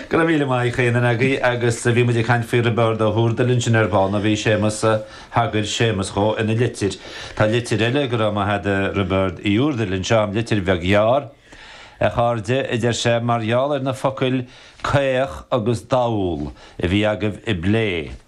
Go raibh míle maith Dé Céadaoin agaibh agus bhí muid ag caint faoi Roibeárd Ó hÚrdail ansin ar ball, nó bhí Séamus, thagair Séamus dhó ina litir. Tá litir eile, go raibh maith a'd a Roibeárd Uí Úrdail, anseo a'm, litir bheag ghearr. A chairde, a deir sé, mar gheall ar na focail 'caoch' agus 'dall' a bhí agaibh á phlé,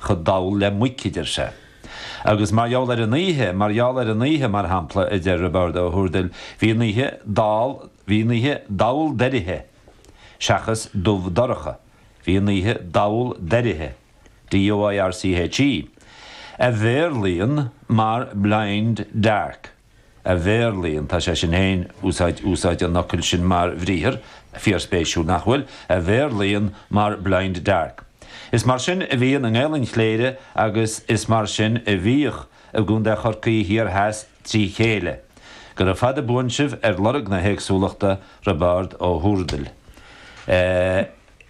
chomh dall le muic, a deir sé. Agus mar gheall ar an oíche, mar gheall ar an oíche, mar shampla, a deir Roibeárd Ó hÚrdail, bhí an oíche dall, bhí an oíche dall doirche, seachas dubh dorcha, bhí an oíche dall doirche, DOIRCHE, a Bhéarlaíonn mar blind dark. a Bhéarlaíonn, tá sé sin féin, úsáid, úsáid an fhocail sin mar bhriathar, fíorspéisiúil, nach bhfuil? a Bhéarlaíonn mar blind dark. Is mar sin a bhíonn i nGaelainn Chléire agus is mar sin a bhíodh i gContae Chorcaí thiar theas trí chéile. Go raibh fada buan sibh ar lorg na héagsúlachta, Roibeárd Ó hÚrdail. Eh.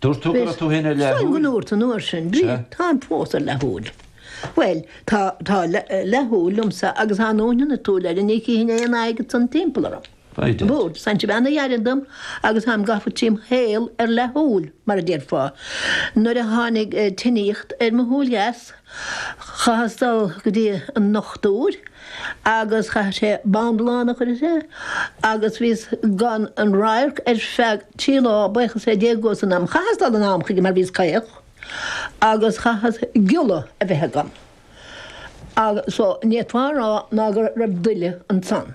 Dúirt tú go raibh tú féin ar leathshúil. Táim, go ndúrt an uair sin, Bríd, táim fós ar leathshúil. Bhuel, tá leathshúil liomsa agus thá neoinín ar an tsúil eile, ní chífinn aon phioc agat san timpeall orm. Bhí. Bhúr san cibé a dh'éirigh dom agus tháim ag gabháil trím shaol ar leathshúil, mar a déarfá. Nuair a tháinig tinníocht ar mo shúil dheas, Chaitheas dul go dtí an dochtúir agus chaith sé bindealán a chur air agus bhíos gan aon radharc ar feadh trí lá, baochas le Dia agus an t-am. Chaitheas dul in am chuige mar bhíos caoch agus chaitheas giolla a bheith agam. Agus so, ní féidir a rá ná go raibh daille ansan.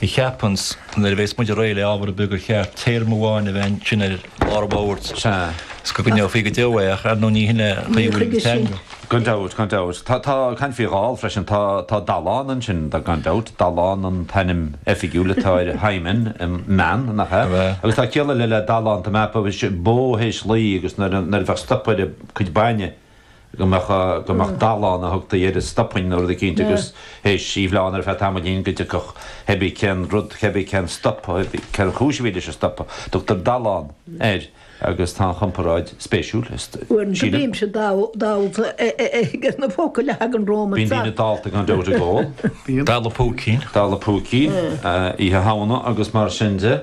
Ní cheapfainnse, nuair a bhéas muide réidh le ábhar ar bith, gur cheart téarma amháin a bheith ansin ar lár an bhóthair, is go gcoinneofaí go deo é, ach ar ndú ní shin é an chaoi a bhfuil an teanga. Gan dabht, gan dabht. Tá, tá, caint faoi dall freisin, tá, tá dallán ansin, gan dabht, dallán an t-ainm oifigiúil atá air, hymen mná, nach ea? Agus tá ciall eile le dallán, tá mé, bó théis laoi agus nuair a, nuair a bheadh stop ar a cuid bainne, go mbeadh, go mbeadh dallán a thugtaí air a stopann na rudaí cinnte agus théis í a bhleán ar feadh tamaillín go dtiocfadh cébí cén rud, cébí cén stop, cén chúis a bhí leis an stop. Tugtar dallán air agus tá an chomparáid spéisiúil, sílim. Uaireanta bímse dallta ag na focail a thagann romham ar fad. Bíonn daoine dallta gan dabht ag ól. Dalladh púicín. Dalladh púicín, Oíche Shamhna agus mar sin de.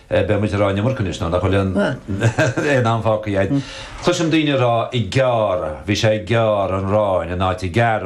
Beidh muid ag rá an iomarca anois, nuair nach bhfuil aon am fágtha. Cloisim daoine ag rá 'ag gearradh', 'bhí sé ag gearradh an aráin' in áit 'ag gearradh'.